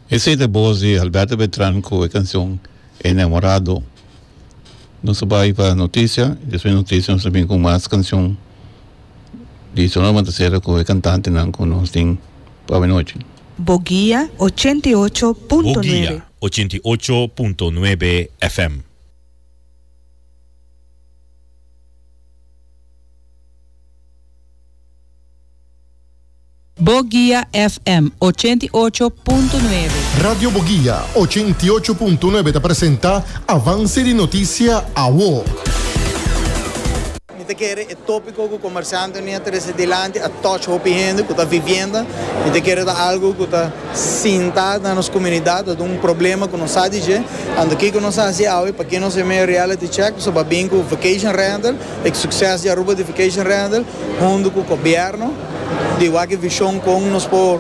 Esey ta bos di Alberto Beltran cu e cancion Enamorado. Nos a bay pa noticia y despues di noticia nos ta bini cu mas cancion di su norma ta cera cu e cantantenan cu nos tin pa avenochi. Boguia ochenta i ocho punto Boguia nuebe. ochenta i ocho punto nuebe FM. Boguia FM ochenta i ocho punto nuebe. Radio Boguia ochenta i ocho punto nuebe ta presenta Avance di Noticia Awo. Mi ta kere e topiko ku komersante mi a trese dilanti a touch hopi hende ku ta vivienda. Mi ta kere ta algu ku ta sinta na nos komunidat, ta duna un problema ku nos sa di dje. Anto kiko nos a hasi awe? Pakiko nos a meyo reality check? Nos a ba bin ku vacation rental, e sukses di Aruba di vacation rental, hundu ku gobièrnu. Di wak e vision kon nos por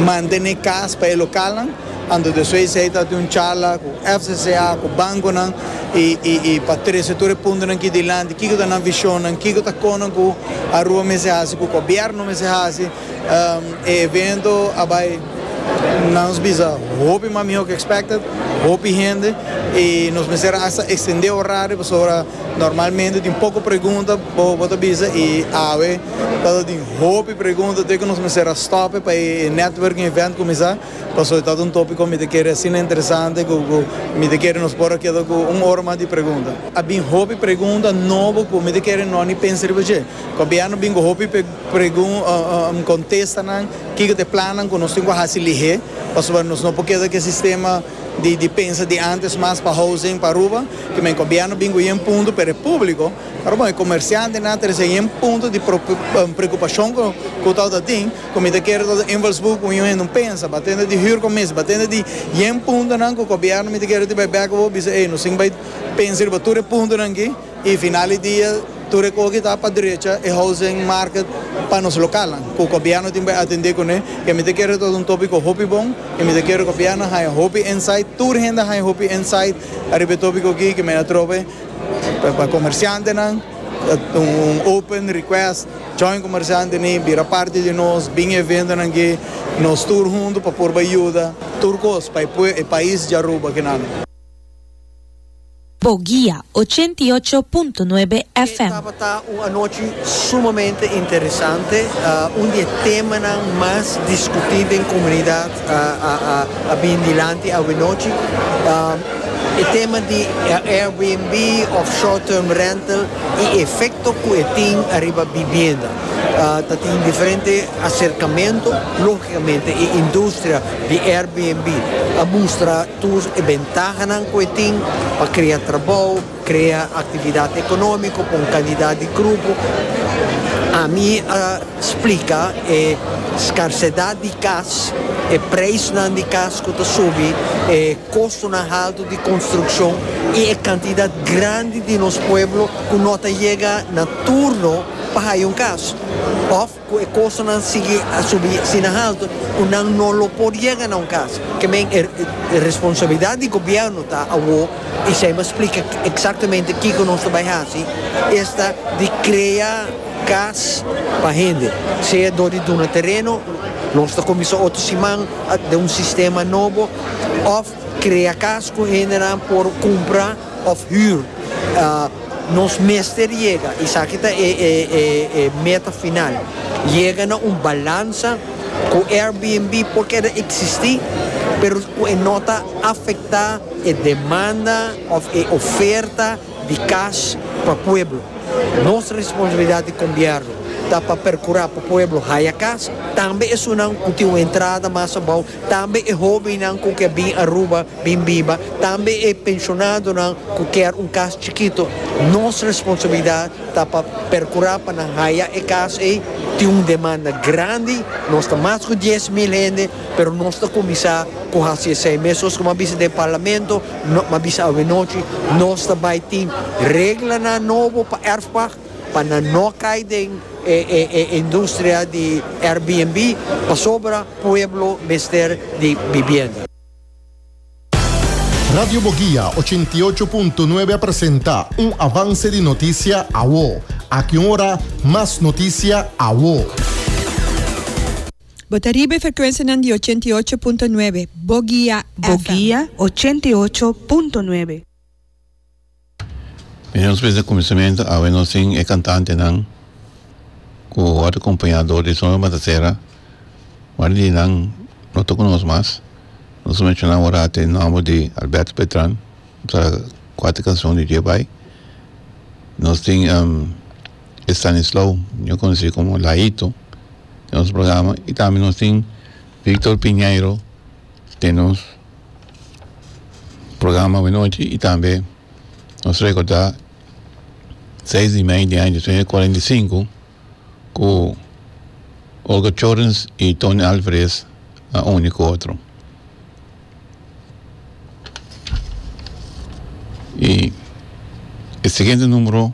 mantene kas pa e lokalnan, anto di esei si ey ta di un charla ku FCCA, ku bankonan y pa trese tur e puntonan aki dilanti, kiko ta nan visionnan, kiko ta konan ku Aruba mester hasi, ku gobierno mester hasi, e evento a bay na nos bisa hopi mas miho ku expected, hopi hende y nos mester asta extende orario pasobra normalmente tin poko pregunta. Bo bo ta bisa i awe ta ta tin hopi pregunta te ku nos mester a stòpe pa e networking event kuminsá pasobra ta ta un topiko ku mi ta kere asina interesante ku mi ta kere nos por a keda ku un ora mas di pregunta. A bin hopi pregunta nobo ku mi ta kere no ni pensa riba dje. Gobièrnu bin ku hopi pregunta kontesta nan kiko ta e plannan ku nos tin ku hasi lihé pasobra nos no por keda ku e sistema di di pensa di antes mas pa housing pa Aruba. Kimen gobièrnu bin ku yen punto pero e públiko. Bon, e comerciantenan ta recibe un punto di preocupacion cu ta ota tin, cu mi ta kere ta ota invalsburgo cu miun hende un pensa, ba tende di hür comisie, ba tende di yen puntonan cu gobierno mi ta kere ta bai bek cu bo bisa, ey, nos tin bai pensa riba tur e puntonan aki y final di dia tur e cosa aki ta pa drecha e housing market pa nos localnan cu gobierno tin bai atende cune, y mi ta kere ta ota un topico hopi bon y mi ta kere gobierno haya hopi insight, tur hende haya hopi insight riba e topico aki cu mi a trobe. Pa comerciantenan ta un open request, join comerciante ni bira parti di nos, bin eventonan gee, nos tur hunto pa por bay yuda tur cos pa e pais di Aruba kinan. Bo guia ochenta i ocho punto nuebe Ke FM. tabata un anochi sumamente interesante. Un di e temanan mas discutí den comunidad a bin dilanti awinochi. E tema di Airbnb of short term rental y e efecto cu e tin ariba bibienda. Ta tin diferente acercamento. Logicamente e industria di Airbnb a mustra tur e bentahanan cu e tin pa crea trabao, Krea aktividat ekonómiko pa un kantidat di grupo. Ami a splika e skarsedat di kas, e preisnan di kas ku ta subi, e kostonan haltu di konstrukshon i e kantidat grandi di nos pueblo ku no ta yega na turno pa haya un kas. Òf. Cu e costonan sigui a subi si na halto cu nan no lo por yega na un cas. Ke men e responsabilidad di gobierno ta awo y esey mi a splica exactamente kico nos lo bay haci, esta di crea cas pa hende, sea door di duna tereno, nos ta cuminsa otro siman den un sistema nobo, of. Krea kas ku hendenan por kumpra òf hür. Nos mester yega, esaki ta e meta final, yega na un balansa ku Airbnb por keda eksistí, pero ku e no ta afektá e demanda òf e oferta. di cash pa pueblo. Nos responsabilidad di combierno ta pa percura pa pueblo haya cas, tambe esunnan cu tin un entrada mas abao, tambe e hobennan cu ke bin Aruba bin biba, tambe e pensionadonan cu kier un cas chikito. Nos responsabilidad ta pa percura pa nan haya e cas ey. Tin un demanda grandi, nos ta mas cu dies mil hende. Pero nos ta kuminsá ku hasi esei. Mesuz ku mi a bisa den parlamento, mi a bisa awenochi, nos ta bai tin reglanan nobo pa Erfpach pa nan no kai den e e industria di Airbnb pasobra pueblo mester di bibienda. Radio Boguia ochenta i ocho punto nuebe a presenta un avanse di notisia awo. Aki un ora mas notisia awo. Bo ta riba e frekuensianan di ochenta i ocho punto nuebe Bogia FM. Bogia ochenta i ocho punto nuebe. Mi nos bisa kuminsamentu awe nos tin e kantantenan ku a ta kompañá dor di Summer Matasera, ma di nan no ta ku nos mas. Nos a menshoná ora te nòmber di Alberto Beltran, ku ta kuater kanshon di dje bai. Nos tin. Estanislao ño conoci como Laito den nos programa y tambe nos tin Victor Piñeiro den nos programa Buen Nochi y tambe nos recorda seis di mei den aña tuenta cuarenta y cinco cu Olga Chorens y Tony Alvarez a uni cu otro y e siguiente numero.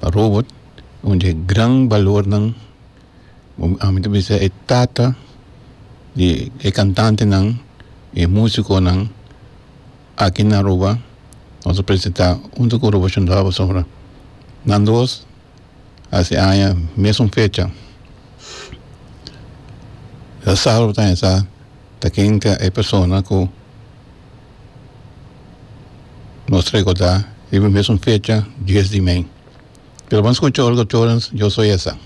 pa robot un di e gran balornan a mi ta bisa e tata di e kantantenan y e musikonan aki na Aruba nos a presentá huntu ku Robot Shundó Abasombra nan dos a si aña mesun fecha e sábado ta hesa ta kinka e persona ku. Nos recorda riba e mesun fecha dies di mei. Pero bo a skucha olga Torrens Yo Soy Esa.